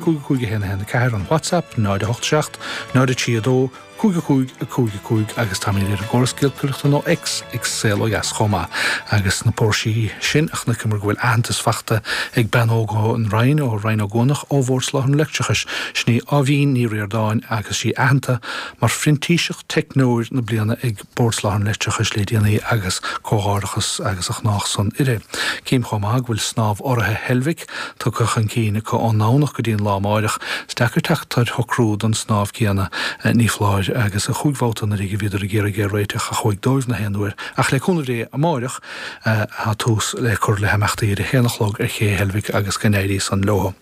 5 5 1 1 4 an WhatsApp, 087 032 55 55 agus tá mé ar an gcóras giolcaireachta nó X, ag Saol Ó Dheas chomh maith. Agus sna póirsí sin, chonaiceamar go bhfuil aitheantas fachta ag bean óg ón Rinn, ó Rinn Ó gCuanach, ó Bhord Soláthair an Leictreachais, sin í Áibhín Ní Ríordáin, agus is í aitheanta mar phrintíseach teicneoir na bliana ag. Bord Soláthair an Leictreachais le déanaí agus comhghairdeachas as ucht san léi. Cím chomh maith go bhfuil snámh urraithe Heilbhic tugtha chun cinn acu ón nDomhnach go dtí an lá amáireach, is deacair teacht ar shocrú don snámh céanna ní foláir agus cúig bhabhta anuraidh a bhíodar ag iarraidh é réiteach a chuaigh díobh gach aon uair ach le cúnamh Dé amáireach Tá tús le cur le himeachtaí ar a haon a chlog ar Ché Heilbhic agus go n-éirí san leo.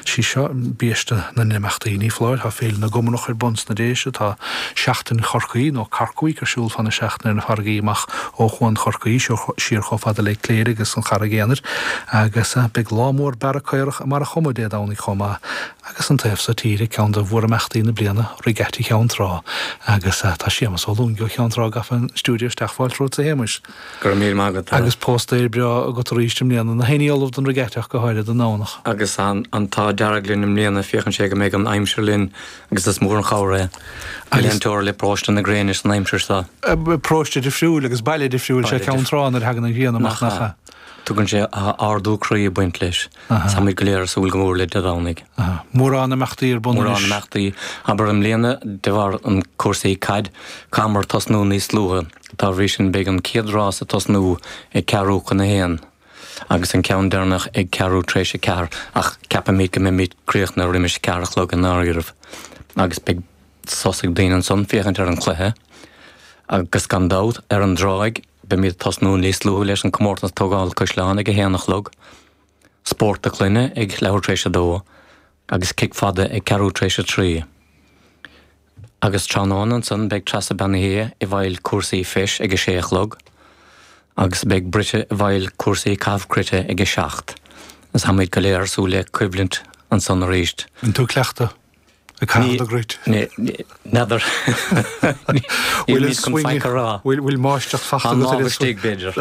Is í seo biaiste na n-imeachtaí, ní foláir, tá Féile na gComarach ar bun sna Déise, tá Seachtain Chorcaí, nó Cork Week, ar siúl fá na seachtaine ar na farraigí amach ó Chuan Chorcaí siar chomh fada le Cléire agus an Charraig Aonair, agus beidh lá mór bearradh caorach i mBarra Choma Dé Domhnaigh chomh maith. Agus an taobh so tíre, ceann de mhórimeachtaí na bliana, Regatta Cheann Trá, agus tá Séamas Ó Lúinge ó Cheann Trá gafa an stiúideo isteach fáilte romhat a Shéamais. Go raibh míle maith agat. Agus póstaer breá agat arís i mbliana, na héinne ullamh don Regatta go háirid, an Domhnach. Agus an t-ádh dearg linn i mbliana, féachann sé go mbeidh an aimsir linn agus is mór an chabhair é, glaoitear paróiste na gréine air san aimsir seo. Paróiste difriúil agus baile difriúil is ea Ceann Trá nuair a thagann an ghrian amach, nach ea? Tagann sé, ardú croí ag baint leis. Táimid go léir ag súil go mór le Dé Domhnaigh. Mórán imeachtaí ar bun anois. Mórán imeachtaí, abair i mbliana de bharr an cúrsaí caid, chaitheamar tosnú níos luaithe. Dá bhrí sin beidh an chéad rás ag tosnú ag ceathrú chun a haon agus an ceann deireanach ag ceathrú tar éis a ceathair ach ceapaimid go mbeimid críochnaithe roimis a ceathair a chlog i ndáiríribh agus beidh sos ag daoine ansan féachaint ar an chluiche agus gan dabht, ar an dtráigh, beimid ag tosnú níos luaithe leis an comórtas tógála caisleáin ag a haon a chlog, spórt clainne ag leathuair tar éis a dó, agus cic fada ag Ceathrú tar éis a trí. Agus tráthnóna ansan beidh Treasa Bean Uí hAodha i bhfeighil cúrsaí Feise ag a sé a chlog agus beidh Brighde i bhfeighil cúrsaí caitheamh cruite ag a seacht. Agus táimíd go léir ag súil le coimhlint ansan arís. Bhfuil tú ag cleachtadh ag caitheamh an chruite? N'fheadar. Níl mé chun faic a rá. Bhfuil máistreacht fachta agat ar an. An istigh, b'fhéidir.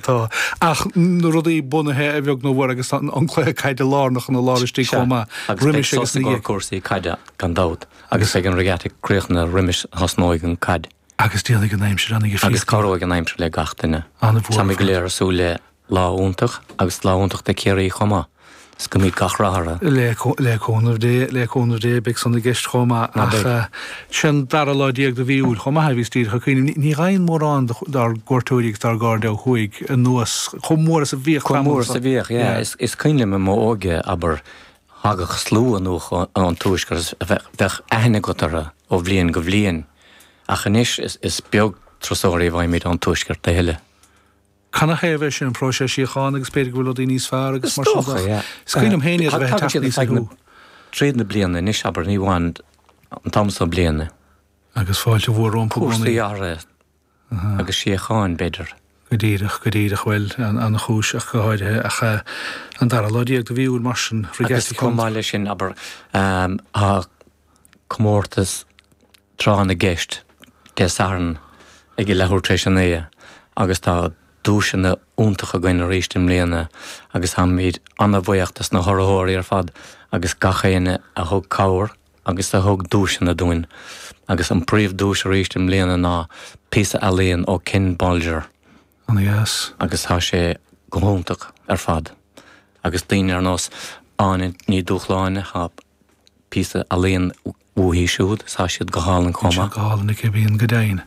Tá. Ach na rudaí bunaithe a bheag nó mhór agus an cluiche caide lárnach ina lár istigh chomh maith. Roimis agus na. Agus cúrsaí caide gan dabht. Agus ag an regatta críochnaithe roimis thosnóidh an caid. Agus déanfaidh an aimsir an. Agus cabhróidh an aimsir le gach duine. An bhfuair. Táimid go léir ag súil le. Lá iontach agus lá iontach do Chiarraí chomh maith. Is go mbeidh gach rath orthu. Le cúnamh Dé, le cúnamh Dé, beidh san i gceist chomh maith. Ná beidh? Sé an dara lá déag de mhí Iúil chomh maith bhíos díreach ag cuimhneamh. Ní ghabhann mórán dár gcuairteoirí agus dár gcairde ó thuaidh anuas chomh mór is a bhíodh tamall. Chomh mór is a bhíodh, yeah. Is cuimhin liom i m'óige, abair, thagadh slua anuas ón Tuaisceart, bheadh aithne agat orthu ó bhliain go bliain. Ach anois is beag turasóirí a bhfaighimid ón Tuaisceart a thuilleadh. Canathaobh é sin? An próiseas síochána agus b'fhéidir go bhfuil rudaí níos fearr agus mar sin de ach is cuimhin liom féin iad a bheith ag teacht aníos ag an tráth na bliana anois, abair, ní amháin an t-am seo bliana. Agus fáilte mhór rompu i gcónaí. Cúrsaí áirithe agus síocháin, b'fhéidir. Go díreach, go díreach. Bhuel, an-chúis ach go háirithe. Ach an dara lá déag de mhí Iúil mar sin, rith geaitsí chugam. Agus chomh maith leis sin, abair, tá comórtas tráth na gceist Dé Sathairn ag a leathuair tar éis a naoi agus tá duaiseanna iontacha againn arís i mbliana agus táimid an-bhuíoch dos na hurraitheoirí ar fad agus gach éinne a thug cabhair agus a thug duaiseanna dúinn agus an phríomhdhuais arís i mbliana ná píosa ealaíon ó Ken Bolger. Ana dheas. Agus tá sé go hiontach ar fad. Agus daoine ar nós Áine Ní Dhúshláine, píosa ealaíon uaithi siúd is tá siad go hálainn chomh maith. Tá siad go hálainn aici, bíonn go deimhin.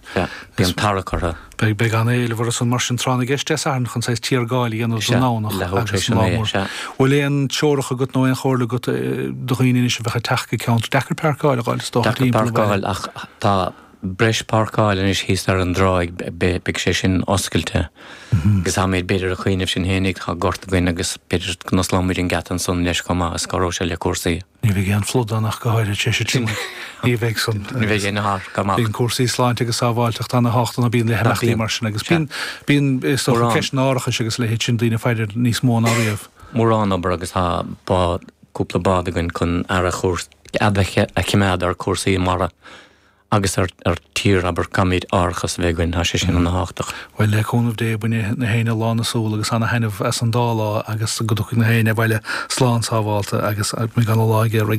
Bíonn tarrac orthu. Beidh an-éileamh orthu san mar sin tráth na gceist Dé Sathairn chun saghas tiargáil a dhéanamh don nDomhnach agus an lá mór. An bhfuil aon treoracha agat nó aon chomhairle agat do dhaoine anois a bheadh ag teacht go ceantar deacair páirceáil a fháil is dócha timpeall an bhaile? Deacair páirceáil ach tá breis páirceáil anois thíos ar an dtráigh, beidh sé sin oscailte agus tá muid b'fhéidir a' cuimhneamh sinn fhéinig, tá gort againn agus b'fhéidir go n-osclóidh muid an geata ansan leis chomh maith is cabhróidh sé le cúrsaí. Ní bheidh aon phluda ann ach go háirid, sé sin sin, ní bheidh san. Ní bheidh aon fhear go maith. Bíonn cúrsaí sláinte agus sábháilteachta ana thábhachtach, bíonn le himeachtaí mar sin agus bíonn, bíonn is dócha ceist an árachais agus a leithéid sin daoine ag faire air níos mó ná riamh. Mórán obair agus tá bád, cúpla bád againn chun aire a chur, aire a choimeád ar chúrsaí mara. Agus ar tír, abair, caithfimid árachas a bheith againn, tá sé sin an-tábhachtach. Bhuel, le cúnamh Dé, bainfidh nach éinne lán na súl agus an-thaitneamh as an dá lá agus go dtiocfaidh nach éinne abhaile slán sábhálta agus go mbeidh ana lá ag Ciarraí.